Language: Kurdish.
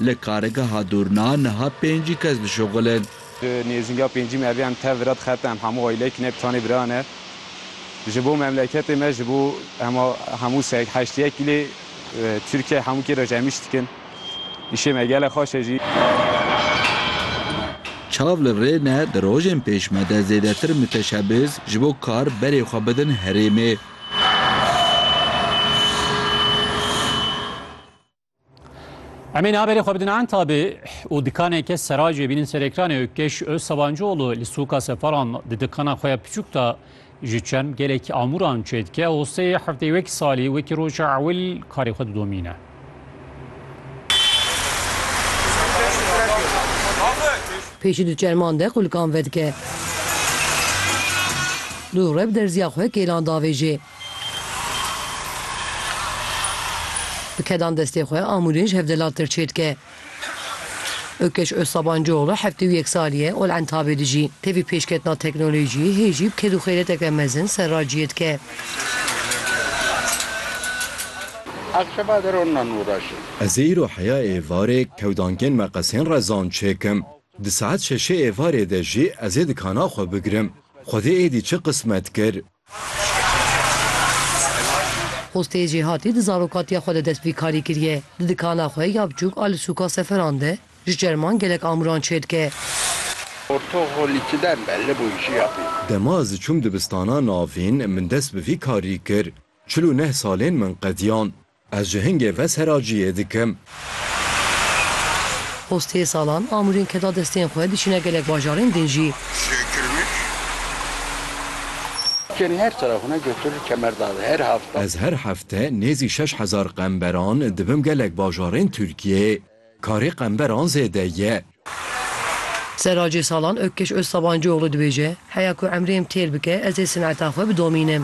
Li Kargeha Dûrna niha pêncî kes dişuxil in. Di nêzînga pêncî me evî em tev vira dixebite em hemû aîleyek ne bi tanê bira ne. Ji bo memleketê me ji bo hema hemû se heştiyek gilê Tirkiyeyê hemû kê re ji em îş dikin. Îşê me gelek xweş e jî. Çav li rê ne di rojên pêş me de zêdetir miteşebiz ji bo kar berê xwe bidin herêmê. Em ê naberê xwe bidin entabê û dikaneke seracê bînin ser ekranê Ökkeş Özsabancıoğlu li soka seferan di dikana xwe ya piçûk de ji çend gelekî amûran çê dike û sê hefteyê wekî salî wekî roja ewil karê xwe didomîne. Pê ji du çerman de qulkan vedike. Dû rev derziya xwe kêlan davêjê. Bi kedan destê xwe Amûrên ji hevdelaltir çêdike. Ökeş Özsabancıoğlu heftê û yek salî ye Ol Entabê dijî. Tevî pêşketina teknolojîyê hê jî bi ked û xêreteke mezin ser raciyê dike. Ez ê îro heya êvarê kewdankên meqesên rezan çêkim. Di saet şeşê êvarê de jî ez ê dikana xwe bigirim. Xwedê êdî çi qismet kir. Xwestê Jêhatî di zarokatiya xwe de dest bi karî kiriye. Di dikana xwe ya biçûk a li sûka Seferan de ji çerman gelek amûran çêdike. Dema ez çûm dibistana navîn min dest bi vî karî kir. Çil û neh salên min qediyan. Ez ji hingê ve seraciyê dikim. Xwestiyê salan, amûrên keda destên xwe diçîne gelek bajarên din jî. Ez her hefte nêzî şeş hezar qemberan dibim gelek bajarên Tirkiyeyê. Karê qemberan zêde ye. Seracê salan Ökkeş Özsabancıoğlu dibêje, Heya ku emrê em têr bike, ez ê sineta xwe bidomînim.